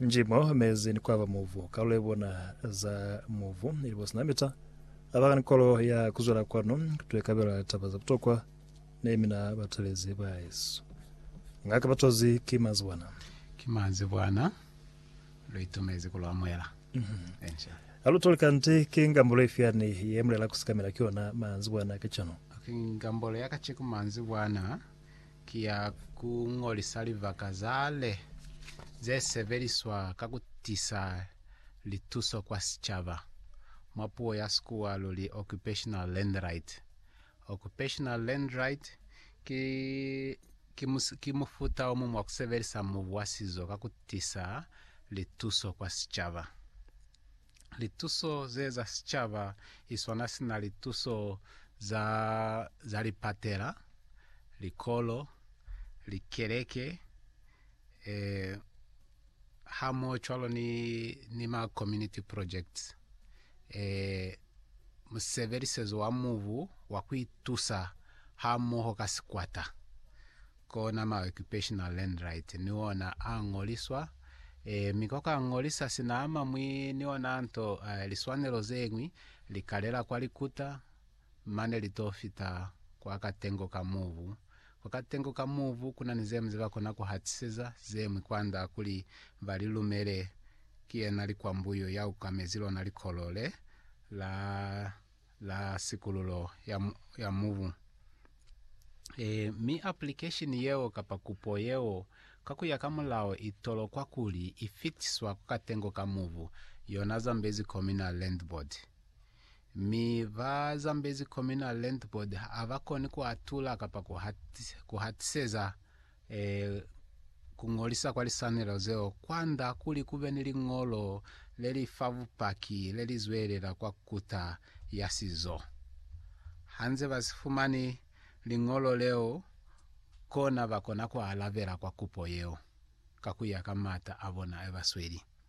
Njimo mezi ni kwaba muvu, kalulo ibona za muvu ili bo sina mita. Abaka ni kolo ya kuzwela kwanu kutwe kabela taba za butokwa ne mina batelezi ba yesu. Ngaka batozi ki mazibwana. Ki mazibwana, lu itumezi ku lu amuhela. Enca. Ha lu toli kanti ki ngambulo ifi yani ye mulela kusikamela ki yona manzibwana kacenu? Ki ngambulo ya kaceku manzibwana. ki ya ku ñolisa libaka za le ze sebeliswa ka ku tisa lituso kwa sicaba, mwa puo ya Sikuwa lu li occupational landright. Occupational landright ki, ki, ki mufuta o muñwi wa ku sebelisa mubu wa sizo ka ku tisa lituso kwa sicaba. Lituso ze za sicaba iswana sina lituso za za lipatela, likolo, likeleke, e, hamoho cwalo ni, ni ma community projects. E, musebelisezo wa mubu wa kuitusa hamoho ka sikwata. Kona ma occupational land right ni ona a ñoliswa, e, mi ko ka ñolisa sina a mamwi ni ona nto, e, liswanelo zeñwi, li kalela kwa likuta, mane li to fita kwa katengo ka mubu. Kwa katengo ka mubu kuna ni zemwi ze ba kona ku hatiseza, zemwi kwanda kuli ba li lumele. Ki yena likwambuyo ya ukamezi lona likolo le la. la sikululo ya, ya mubu. E, mi aplikesheni yeo kapa kupo yeo ka kuya ka mulao i tolokwa kuli i fitiswa ku katengo ka mubu, yona Zambezi Communal Land Board. Mi ba Zambezi Communal Land Board ha ba koni ku atula kapa ku hatiseza e, ku ngolisa kwa lisanelo zeo kwanda kuli kube ni liñolo le li fa bupaki le li zwelela kwa Kuta ya Sizo. Ha nze ba si fumani liñolo leo, kona ba kona ku alabela kwa kupo yeo ka ku ya ka m'ata a bona a ba sweli.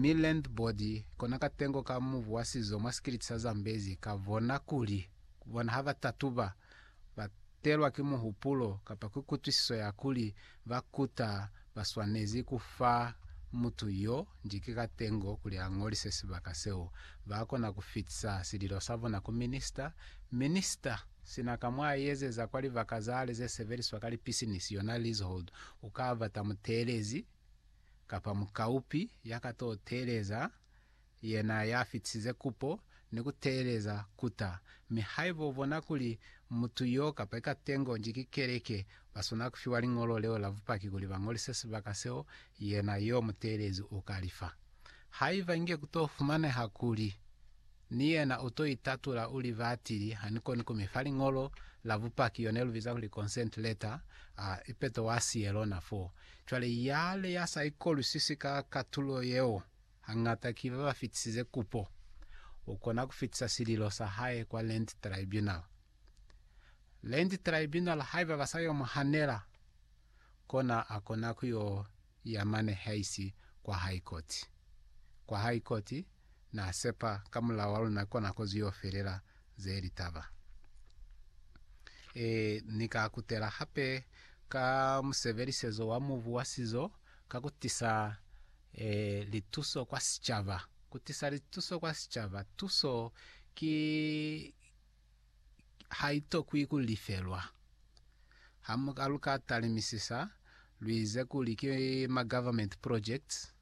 mi landboard kona katengo ka mubu wa sizo mwa sikiliti sa Zambezi ka bona kuli bona ha ba tatuba, ba telwa ki muhupulo kapa ki kutwisiso ya kuli ba kuta ba swanezi ku fa mutu yo njiki katengo kuli a ngolise sibaka seo, ba kona ku fitisa sililo sa bona ku Minista. Minista, sina ka mwa ezeza kwa libaka zale ze sebeliswa ka lipisinisi, yona leasehold, u ka bata muteelezi. kapa mukaupi ya ka to teeleza yena ya fitisize kupo ni ku teeleza kuta. Mi haiba u bona kuli mutu yo kapa ikatengo nji ki keleke, ba swanela ku fiwa liñolo leo la bupaki kuli ba ngolise sibaka seo yena yo muteelezi u ka lifa. Haiba inge ku to fumaneha kuli Ni yena u to itatula u li, Batili ha ni koni ku mi fa liñolo la bupaki, yo ne lu biza kuli consent letter, a ipeto wa siye lona fo. Cwale yale ya sa ikolwisisi ka katulo yeo, hañata ki ba ba fitisize kupo, u kona ku fitisa sililo sa hae kwa Land Tribunal. Land Tribunal haiba ba sa yo mu hanela, kona a kona ku yo ya mane haisi kwa High Court. Kwa High Court na sepa ka mulao wa luna kona ko ziyo felela ze litaba. E, ni ka kutela hape ka musebelisezo wa mubu wa sizo ka kutisa e, lituso kwa sicaba. Kutisa lituso kwa sicaba. Tuso ki, haitokwi ku lifelwa. Hamuka luka talimisisa, luize kuli ki ma government projects,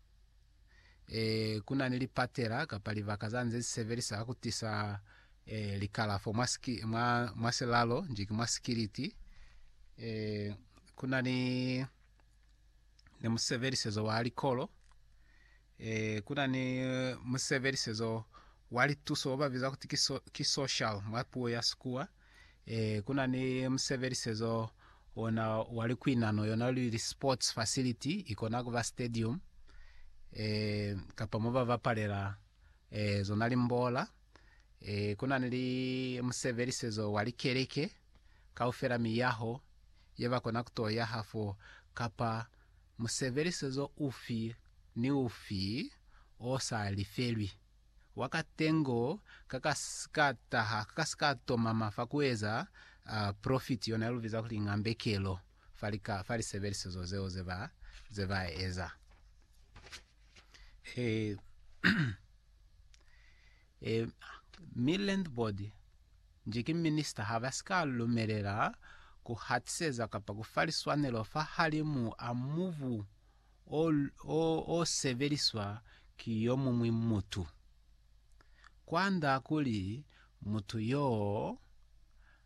e, kuna ni lipatela kapa libaka za nze zisebelisa ka kutisa e, likalafo mwa, mwa, mwa silalo nji ki mwa sikiliti, e, kuna ni, ni musebelisezo wa likolo, Ee, ku na ni musebelisezo wa lituso babiza kuti ki, so, ki social mwa puo ya Sikuwa. Ee, ku na ni musebelisezo ona wa likuinano yona lu li sports facility, ikona kuba stadium ee, kapa mo ba bapalela ee, zona limbola. Ee, ku na ni musebelisezo wa likeleke, kaufela miyaho ye ba kona ku to yaha fo, kapa Musebelisezo ufi ni ufi o sa lifelwi wa katengo ka ka si ka taha, ka ka si ka tomama fa ku eza profiti, yona ye lu biza kuli ng'ambekelo, fa lika, fa lisebelisezo zeo ze ba, ze ba eza. Ee. Ee, mi landlord nji ki minister ha ba si ka lumelela ku hatiseza kapa ku fa liswanelo fahalimu a mubu o, o, o sebeliswa ki yo muñwi mutu. Kwand'a kuli mutu y'o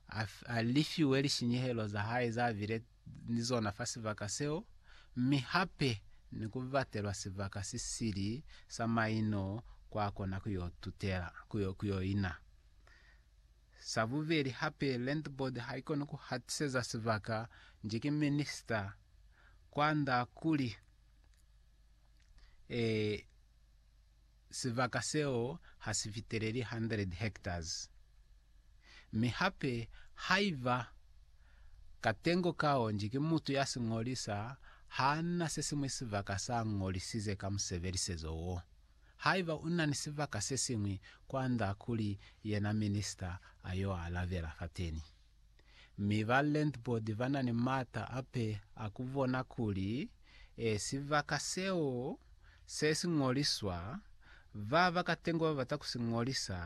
a, a lifiwe lishinyehelo za hae za bile, ni zona fa sibaka seo, mi hape ni ku batelwa sibaka si sili sa maino kwa kona ku yo tutela, ku yo, ku yo ina. Sa bubeli hape, Land Board ha i koni ku hatiseza sibaka nji ki minista kwand'a kuli, eh, Sibaka seo ha si fiteleli 100 hectares, mi hape haiba katengo kaonji ki mutu ya si ñolisa, ha na se siñwi sibaka sa ñolisize ka musebelisezo wo. Haiba u na ni sibaka se siñwi, kwanda kuli yena minista a yo alabela fateni. mi ba landlord ba na ni m'ata ape a ku bona kuli e sibaka seo se si ñoliswa, ba ba katengo ba bata ku si ñolisa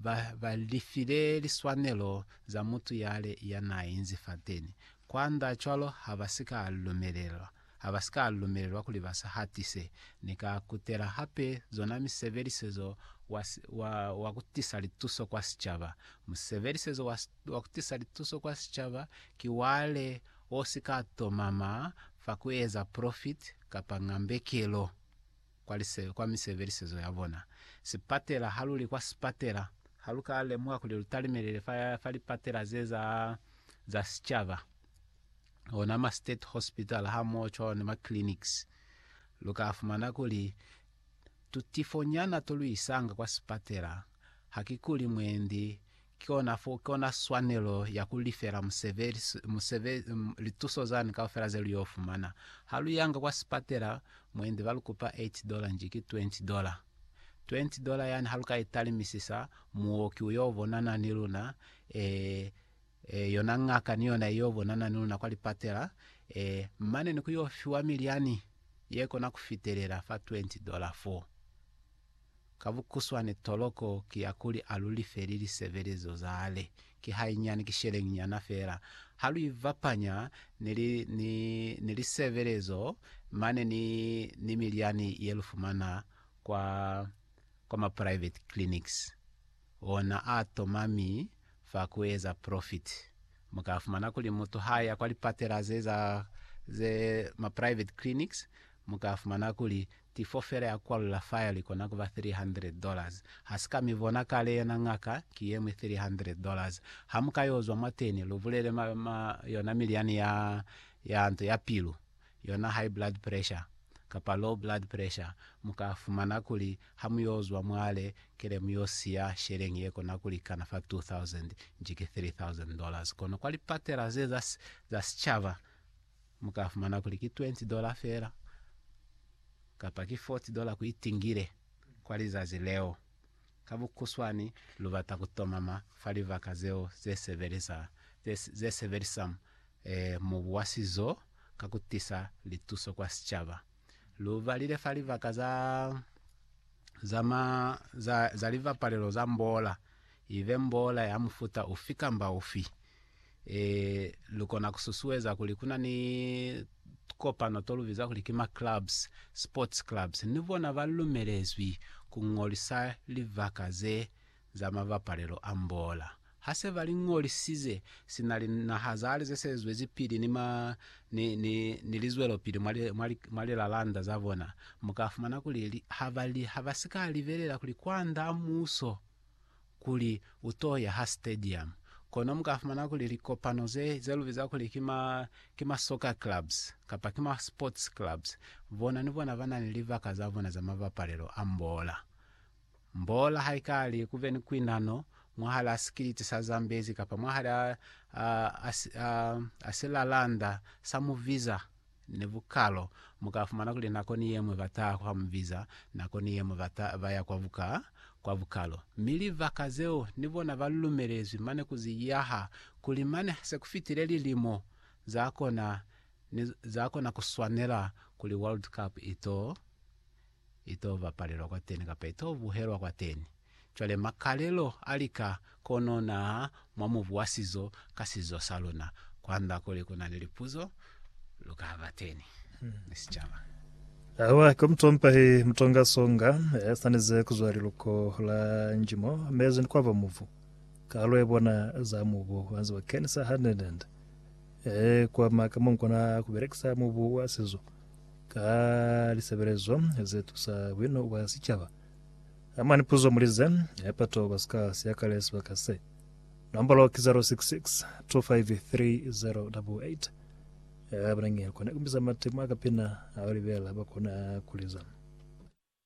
ba ba lifile liswanelo za mutu yale ya n'a inzi fateni kwand'a cwalo ha ba si ka lumelelwa. ha ba si ka lumelelwa kuli ba sa hatise. Ni ka kutela hape zona misebelisezo wa, wa, wa ku tisa lituso kwa sicaba. Musebelisezo wa, wa ku tisa lituso kwa sicaba ki wale wo si ka tomama fa ku eza profit kapa ngambekelo kwa lise, kwa misebelisezo ya bona. Sipatela ha lu li kwa sipatela, ha lu ka lemuha kuli lu talimelele fa, fa lipatela ze za, za sicaba. ona ma state hospital hamoho cwalo ni ma clinics, lu ka fumana kuli tutifo nyana to lu isanga kwa sipatela ha ki kuli mwendi ki ona fo ki ona swanelo ya ku lifela musebeli musebeli lituso zani kaufela ze lu yo fumana. Ha lu yanga kwa sipatela mwendi ba lu kupa 8 dollar nji ki 20 dollar. 20 dollar yani ha lu ka italimisisa, muoki u yo bonana ni luna, e, e, yona ngaka ni yona iyo bonana ni luna kwa lipatela, e, mane ni ku yo fiwa milyani ye kona ku fitelela fa 20 dola fo. Ka bukuswane toloko ki ya kuli a lu lifeli lisebelezo zale, ki hainyani, ki sheleñi nyana fela, ha lu ibapanya ni, li, ni, ni lisebelezo mane ni, ni milyani ye lu fumana kwa, kwa ma private clinics. Ona a toma mi fa ku eza profit. Mu ka fumana kuli mutu ha ya kwa lipatela ze za ze ma private clinics, mu ka fumana kuli tifo fela ya kwalula fa ya li kona ku ba $300 dollars. Ha si ka mi bona kale yona ngaka ki ye mwi $300 dollars. Ha mu ka yo zwa mwateni, lu bulele ma, ma, yona milyani ya, ya nto ya pilu. yona high blood pressure kapa low blood pressure, mu ka fumana kuli ha mu yo zwa mwale kele mu yo siya sheleñi ye kona ku likana fa 2000 nji ki 3000 dollars. Kono kwa lipatela ze za, za sicaba mu ka fumana kuli ki 20 dollar fela kapa ki 40 dollar ku itingile kwa lizazi leo. Ka bukhuswani, lu bata ku tomama fa libaka zeo ze sebeleza, ze, ze sebelisa mubu wa sizo ka ku tisa lituso kwa sicaba. Lu balile fa libaka za, za ma, za, za libapalelo za mboola, ibe mboola ya mufuta ufi kamba ufi. lu kona ku susueza kuli ku na ni tukopano to lu biza kuli ki ma clubs, sports clubs, ni bona ba lumelezwi ku ñolisa libaka ze za mabapalelo a mbola. Ha se ba li ñolisize, si na li naha za hali ze se zwezipili ni ma, ni, ni, ni lizwelopili mwa li, mwa li, mwa lilalanda za bona, mu ka fumana kuli li, ha ba li, ha ba si ka libelela kuli kwand'a muso kuli u t'o ya ha stadium. Kono mu ka fumana kuli likopano ze, ze lu biza kuli ki ma, ki ma soccer clubs, kapa ki ma sports clubs, bona ni bona ba na ni libaka za bona za mabapalelo a mbola. Mbola ha i ka li ku be ni kuinano mwahal'a sikiliti sa Zambezi kapa mwahal'a a, a, a, a silalanda sa Muviza, Ni bukalo, mu ka fumana kuli nako ni yemwe ba taha kwa mu biza, nako ni yemwe ba ta, ba ya kwa buka, kwa bukalo. Mi libaka zeo, ni bona ba lumelezwi mane ku zi yaha, kuli mane ha se ku fitile lilimo, za kona, ni, za kona ku swanela kuli World Cup i to, Ito bapalelwa kwateni kapa ito buhelwa kwateni. Cwale makalelo a lika kono naha mwa mubu wa sizo ka sizo sa luna. Kwanda kuli kuna ni lipuzo, luka bateni ni sicaba. Awa ki mutompa hi mutonga songa ya sanize kuzwa liluko la njimo mezi ni kwaba mubu. Kalo ya bona za mubu wanze wa kenisa ha nende nende. E kwa maka monkona kubelekisa mubu wa sizo ka lisebelezo ze tusa bwino bwa sicaba. Amani puzo muli ze, bato ba si ka siyakale sibaka se. Nombolo ki 066 253088 abanangeli kona kumbisa matemo a kapina a libela bakona kuliza.